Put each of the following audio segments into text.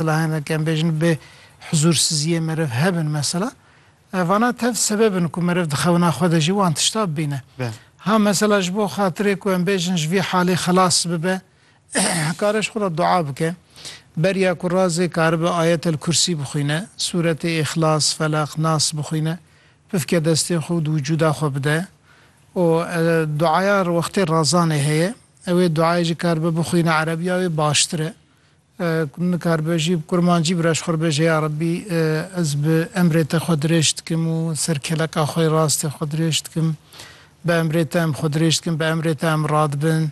Bila hene ke em bêjin bê huzûrsiziyê meriv hebin mesela, vana tev sebeb in ku meriv di xewina xwe de jî wan tişta bibîne. Ha mesela ji bo xatirê ku em bêjin ji vî halê xilas bibe, kare ji xwe re dua bike. Beriya ku razê karibe Ayetel Kursî bixwîne, sûretê Îxlas, Feleq, Nas bixwîne, pifke destên xwe û di wicûda xwe bide. Û duaya wextê razanê heye. Ew ê duayê jî karibe bixwîne erebiya wê baştir e. Ku nikaribe jî bi kurmancî bira ji xwe re bêje ya Rebî ez bi emrê te xwe dirêj dikim û ser keleka xwe yê rastê xwe dirêj dikim. Bi emrê te em xwe dirêj dikin, bi emrê te em radibin.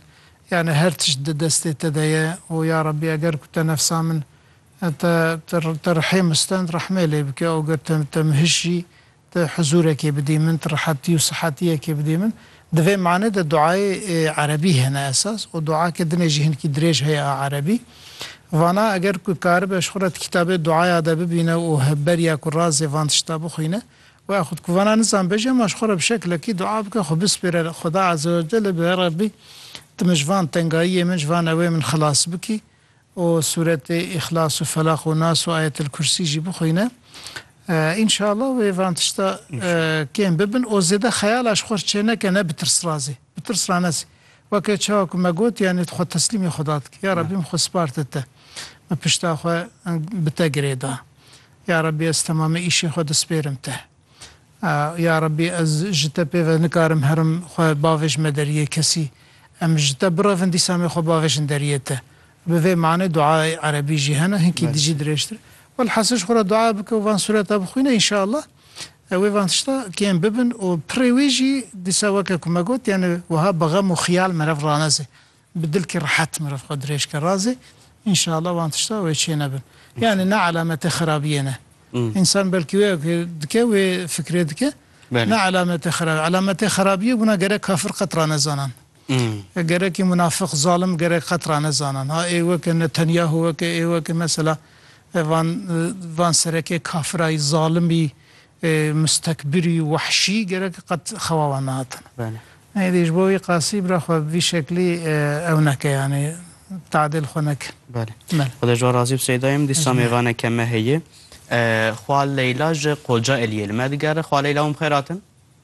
Yanî her tişt di destê te de ye û ya Rebî eger ku te nefsa min te te rihê min stend rehmê lê bike û ger te te min hişt jî Tu huzûrekê bidî min, tu rihetî û sihetiyekê bidî min. Di vê manê de duayê erebî hene esas û duake din e jî hinkî dirêj heye a erebî. Vana eger ku karibe ji xwe re di kitabê duaya de bibîne û beriya ku razê van tişta bixwîne, waya xwe diku vana nizanibe jî hema ji xwe re bi şeklekî dua bike, xwe bispêre li Xweda Azze Wecelle, bi ya Rebbî tu min ji van tengayiyê min, ji van ewê min xilas bikî. û sûretê Îxlas û Felaq û Nas û Ayetel Kursî jî bixwîne. Înşallah wê van tişta kêm bibin û zêde xeyala ji xwe re çêneke ne bi tirsrazê, bi tirs ranesê. Weke çawa ku me got yanî tu xwe teslîmê Xweda dikî. Ya Rebbi min xwe spartê te. Min pişta xwe bi te girêda. Ya Rebbi ez temamê îşê xwe dispêrim te. Ya Rebî ez ji te pê ve nikarim herim xwe bavêjme deriyê kesî. Em ji te birevin dîsa em ê xwe bavêjin deriyê te. Bi vê manê duayê erebî jî hene hinkî dijî dirêjtir. Welhasil ji xwe re dua bike û van sureta bixwîne înşeallah wê van tişta kêm bibin û pirê wî jî dîsa weke ku me got yanî wiha bi xem û xiyal merev raneze. Bi dilkî rehet mirov xwe dirêj ke razê înşeallah wan tişta wê çênebin. Yanî ne elamete xerabiyê ne. Însan belkî wê ke dike wê fikirê dike ne elamete xerabiyê. Elametê xerabiyê bûna gerek kafir qet ranezanan. Gerekî munafik, zalim gerek qet ranezanan. Ha ê weke Netanyahu weke ê weke mesela van van serekê kafirayî, zalimî, Mustekbirî û wehşî gerek qet xewa wan nehatin. Neyê ji bo wî qasî bira xwe bi vî şeklî ew neke yanî tadêl xwe neke. Belê. Xuda ji wan razî be Seyda yim. Dîsa mêvaneke me heye. Xwa Leyla ji Qoca Eliyê li me digere. Xwa Leyla wan bi xêr hatin.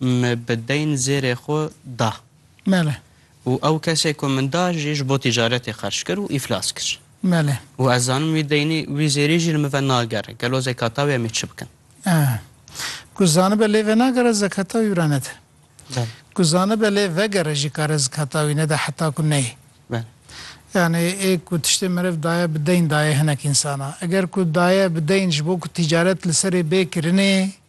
Me bi deyn zêrê xwe da. Mele. Û ew kesê ku min da jî ji bo tîcaretê xerc kir û îflas kir. Mele. Û ez zanim wî deynî, wî zêrî jî li min ve nagere. Gelo zekata wê em ê çi bikin? Eh. Ku zanibe lê venagere zekata wî re nede. Belê. Ku zanibe lê vegere jî kare zekata wî nede heta ku neyê. Belê. Yanî ê ku tiştê meriv daye bi deyn daye hinek însana. Eger ku daye bi deyn ji bo ku tîcaret li serê bê kirinê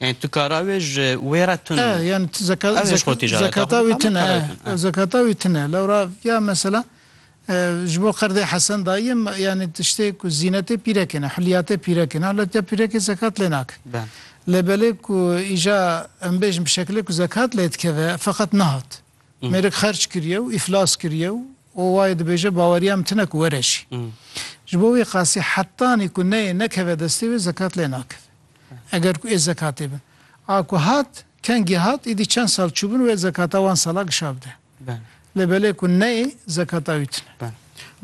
Yani tu kara wê ji wê re tune. E, yani tu zeka, Ev hêj xwe zek, tîcareta zekata xwe wî bike, tune. kara wî tune, E, e. zekata wî tune. Lewra ya mesela e, ji bo qerdê Hesen dayî em yani tiştê ku zînetê pîrekê ne, hulyatê pîrekê ne. Hulyatê pîrekê zekat lê nake. Ben. Lê belê ku îja em bêjin bi şekilê ku zekat lê dikeve feqet nehat. Mêrik xerç kiriye û îflas kiriye û û wayê dibêje baweriya min tune ku were jî. Ji bo wî qasî hetanî ku neyê nekeve destê wê zekat lê nakeve. Eger ku ê zekatê bin. A ku hat, kengî hat, îdî çend sal çûbin wê zekata wan sala gişa bide. Lê belê ku neyê, zekata wî tune.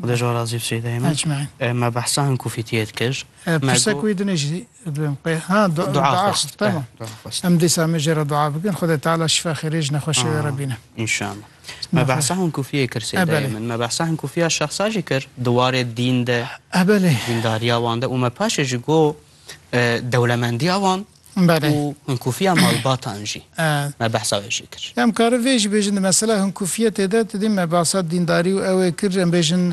Xuda ji we razî bi Seyyîdeyê min. Ecmaîn. Me behsa hin ku fîtiyet kir. Pirse ku wî dinê jî bim qe. Ha dua xwest. Tamam. Em dîsa me jê re dua bikin Xwedê Teala şifa xêrê ji nexweşê wê re bîne. Înşallah. Me behsa hin ku fiyê kir Seyyîdeyê min. Me behsa hin ku fiya şexsa jî kir di warê dîn de, dîndariya wan de û me paşê jî got, dewlemendiya wan û hinkûfiya malbatan jî me behsa wê jî kir. Em kare vê jî bêjin di mesela hinkûfiyetê de tu dî me behsa dîndarî û ewê kir em bêjin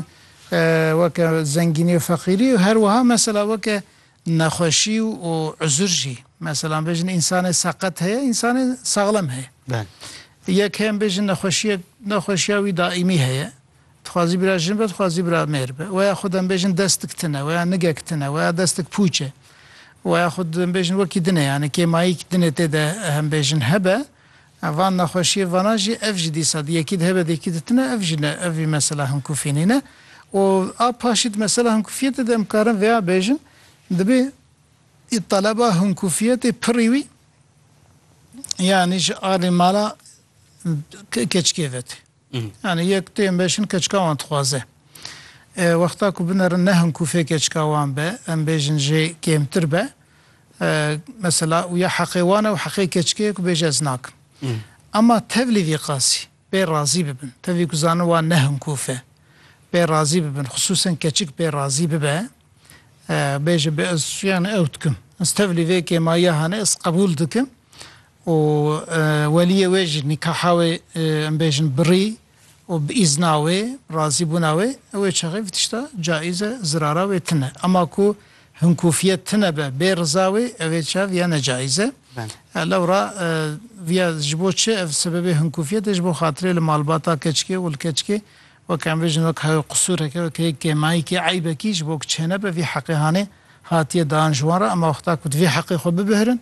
weke zengînî û feqîrî û herwiha mesela weke nexweşî û uzur jî mesela em bêjin însanê seqet heye însanê saxlem heye. Yek heye em bêjin nexweşiyek nexweşiya wî daîmî heye. Dixwazî bira jin be, dixwazî bira mêr be. Weya xwe dem bêjin destik tune, weya nigek tune, weya destik pûç e. Weya xwe dem bêjin wekî din e. Yanî kê mayîk din e tê de hem bêjin hebe. Van nexweşiyê vana jî ev jî dîsa di yekî di hebe di yekî di tune ev jî ne ev jî mesela himkufî nîne. Û a paşî di mesela himkufiyetê de em karin vêya bêjin dibê taleba himkufiyetê pirrî wî yanî ji alî mala keçikê vetê. Yanî yek tu yên bêjin keçika wan dixwaze. Wexta ku binerin ne hin ku fê keçika wan be, em bêjin jê kêmtir be. Mesela ya heqê wan e û heqê keçikê ye ku bêje ez nakim. Ema tevlî vî qasî pê razî bibin. Tevî ku zanin wan ne hin ku fê pê razî bibin. Xisûsen keçik pê razî bibe bêje bi ez yanî ew dikim. Ez tevlî vê kêmayiya hane ez qebûl dikim. û weliyê wê jî nîkaha wê em bêjin birî û bi îzna wê, bi razîbûna wê, ew ê çaxê vê tişta caiz e, zirara wê tune. Ema ku hinkûfiyet tune be bê riza wê ew ê çav ya necaiz e. Lewra vîya ji bo çi ev sebebê hinkûfiyet e ji bo xatirê li malbata keçikê û li keçikê wek em bêjin wek heyw qisûreke wek heyw kêmayîkî eybekî ji bo ku çênebe vî heqê hanê hatiye dan ji wan re ema wexta ku divê heqê xwe bibihrin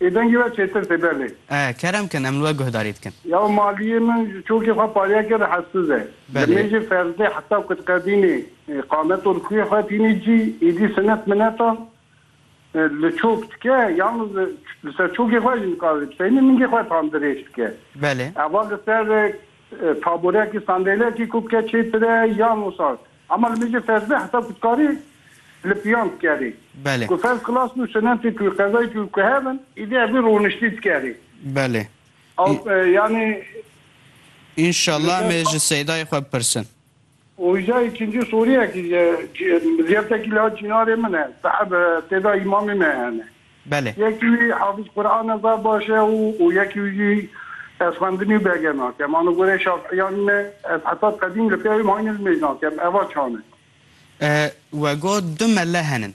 Ê dengê we çêtir tê belê. E, kerem kin em li we guhdarî dikin. Ya maliyê min ji çokê xwe pariya kir hesiz e. Li Belê. mêjê ferdê heta ku diqedînê qamet û li xwî xwe tînî cî, êdî sinet minetan li çok dike yan li ser çokê xwe jî nikare bi seynî mingê xwe tam dirêj bike. Belê. Eva li ser taborekî sandelekî ku bike çêtir e yan wisa Hema li mijî ferzê hesab ku tu karî li piyan dikerî. Belê. Ku ferz kilas û sinetê ku qezayê ku ku hev in îdî evî rûniştî dikerî. Belê. Ew yanî. Înşallah em ê ji Seydayê xwe bipirsin. Hoja îkincî soriyekî ji ziyaftekî li hat cînarê min e. Saheb têda îmamê me hene. Belê. Yekî wî hafiz Qur'an e zaf baş e û û yekî wî jî ez xwendinî û bege nake. Ma li gorê şaf'îyan me ez heta qedîm li pêya wî mayînê li mêj nake. Em eva çan e. We got du mele henin.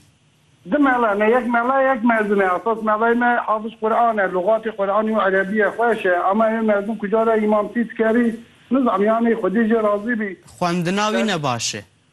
Du mele ne yek mele yek mezin e. Esas meleyê me hafiz Qur'an e. Lugatê Qur'anî û erebîye xweş e. Ema ê mezin ku cara îmamtî dikerî, nizanî yanî xwedî jê razî bî. Xwendina wî ne baş e.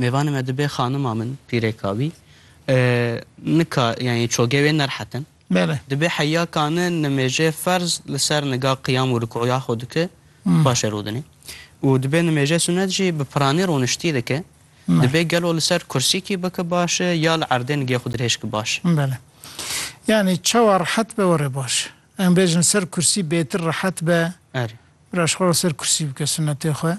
Mêvanê me dibê xanima min pîrêka wî nika yanî çogê wê nerhetin. Bele. Dibê heya kane nimêjê ferz li ser niga qiyam û rikû ya xwe dike paşê rû dinê. Û dibê nimêjê sunet jî bi piranî rûniştî dike. Dibê gelo li ser kursîkî bike baş e ya li erdê nigê xwe dirêjke baş e. Bele. Yanî çawa rehet be were baş e. Em bêjin li ser kursî bêtir rehet be. Erê. Biraj xwe li ser kursî bike sunetê xwe.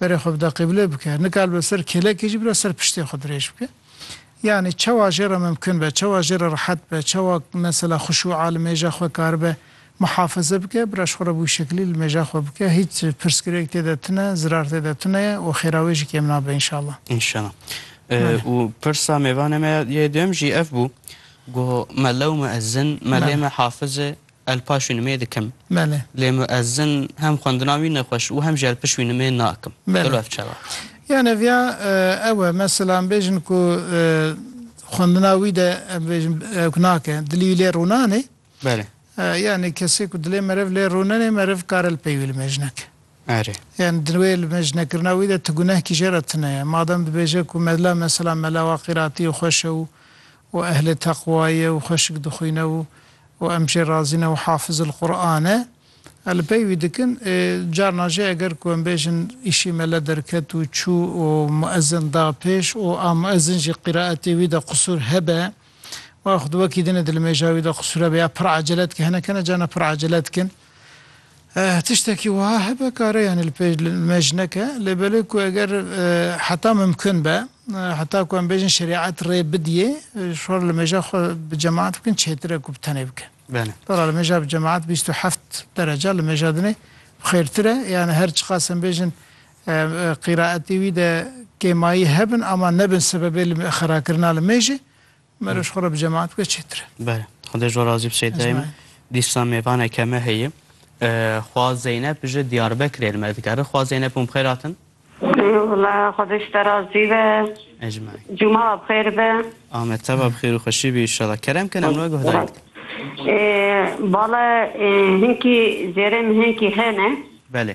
Berê xwe bi daqê bi lê bike. Nikal be ser kêlekê jî bira ser piştê xwe dirêj bike. Yanî çawa jê re mimkun be, çawa jê re rehet be, çawa mesela xuşûa li mêja xwe karibe muhafaze bike, bira ji xwe re bi wî şeklî li mêja xwe bike. Hîç pirsgirêk tê de tune, zirar tê de tune ye û xêra wê jî kêm nabe înşallah. Înşallah. Belê. Û pirsa mêvanê me yê duyem jî ev bû, Goh me lewme ez zin, me lê me hafiz e, El paşwî nimê dikim. Belê. Lê muezzin hem xwendina wî nexweş û hem jî el pişwî nimê nakim. Belê. Gelo ev çawa? Yan ev ya ew e. Mesela em bêjin ku xwendina wî de em bêjin ew ku nake, dilî wî lê rûnanê. Belê. Yanî kesê ku dilê meriv lê rûnenê meriv kar el pey wî li mêj neke. Erê. Yanî di wê li mêj nekirina wî de ti guneh kî jê re tune ye. Madem dibêje ku mela mesela mela wa qîratî û xweş e û û ehlê teqwa ye û xweşik dixwîne û û em jê razî ne û hafizil Qur'an e. Em li pey wî dikin. Carna jî eger ku em bêjin îşî mele derket û çû û muezin da pêş û a muezin jî qîraetê wî de qisûr hebe û ya xwe di wekî dine dilmêja wî de qisûr hebe ya pir acele dike hinek hene carna pir acele dikin. Eh, tiştekî wiha hebe kare yanî li pêş li me ji neke, lê belê ku eger heta mimkun be, heta ku em bêjin şerîet rê bidiyê, şor li mêja xwe bi cemaat bikin çêtir e ku bi tenê bike. Belê. Dola li mêja bi cemaat bîst û heft derece li mêja dinê xêrtir e, yanî her çiqas em bêjin qîraetê wî de kêmayî hebin ama nebin sebebê li xerakirina li mêjê. Meroş xwe re bi cemaat bike çêtir e. Bele. Xwedê ji we razî bi Seyda Emîn. Ecmaîn. Dîsa mêvaneke me heye. Xwa Zeynep ji Diyarbekirê li me dikere. Xwa Zeynep hûn bi xêr hatin. Wala Xwedê ji te razî be. Ecmaîn. Cuma we bi xêr be. Ame te be bi xêr û xweşî bî înşallah. Kerem kin em li we guhdarîn dikin. Bala hinkî zêrê min hinkî hene. Belê.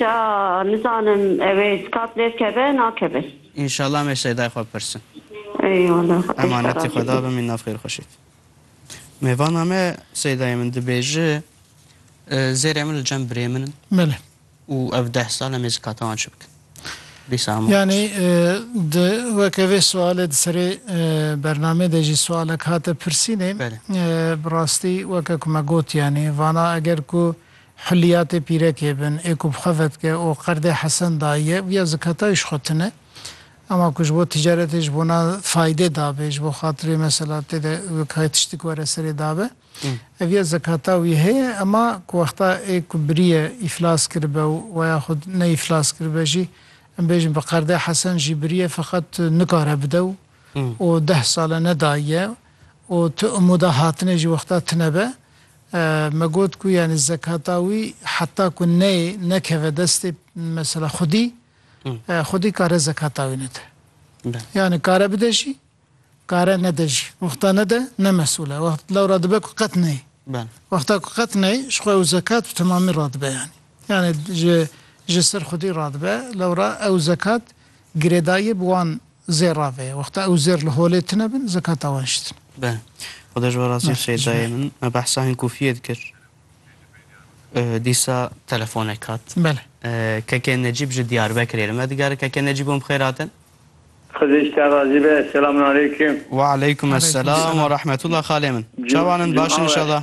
Ca nizanim ew ê skat lê bikeve nakeve. Înşallah em ê Şeydayê xwe bipirsin. Eyvallah xwedê şîfa Emanetê razî Xweda bê. bim înan xêr xweş êt. Mêvana me Şeydayê min dibêje zêrê min li cem birê min in Belê. û ev deh sal em ê zikata wan çi bikin? Dîsa hemû Yanî qas. di weke vê sualê di serê bernamê de jî sualek hate pirsînê. Belê. Bi rastî weke ku me got yanî vana eger ku Hulîya tê pîrekê bin, ê ku bi xwe vedike û qerdê Hesen dayî ye, viya zikata wî ji xwe tune. Ema ku ji bo ticaretê ji bona faydê dabe, ji bo xatirê mesela tê de weke tiştik were serê dabe, ev ya zekata wî heye, ema ku wexta ê ku biriye îflas kiribe û waya xwe ne îflas kiribe jî, em bêjin bi qerdê Hesen jî biriye feqet nikare bide û û deh sal e nedayî ye û tu imûda hatinê jî wexta tune be, Me got ku yanî zekata wî heta ku neyê nekeve destê mesela xwedî, xwedî kare zekata wî nede. Yanî kare bide jî, kare nede jî. Wexta nede ne mesûl e. Wext lewra dibe ku qet neyê. Wexta ku qet neyê ji xwe ew zekat bi temamî radibe yanî. Yanî ji ji ser xwedî radibe lewra ew zekat girêdayî bi wan Zêr rave. Wexta ew zêr li holê tine bin, zekata wan ji tine. Be. Xuda ji we razî be Seyidayê min. Me behsa hin kûfiyê dikir. Dîsa telefonek hat. Bele. Kekê Necîb ji Diyarbekirê li me digere. Kekê Necîb hûn bi xêr hatin? Xwedê ji te razî be. Selamun aleykum. Wa aleykum esselam wa rahmetullah xalê min. Çawan in? Baş in inşallah.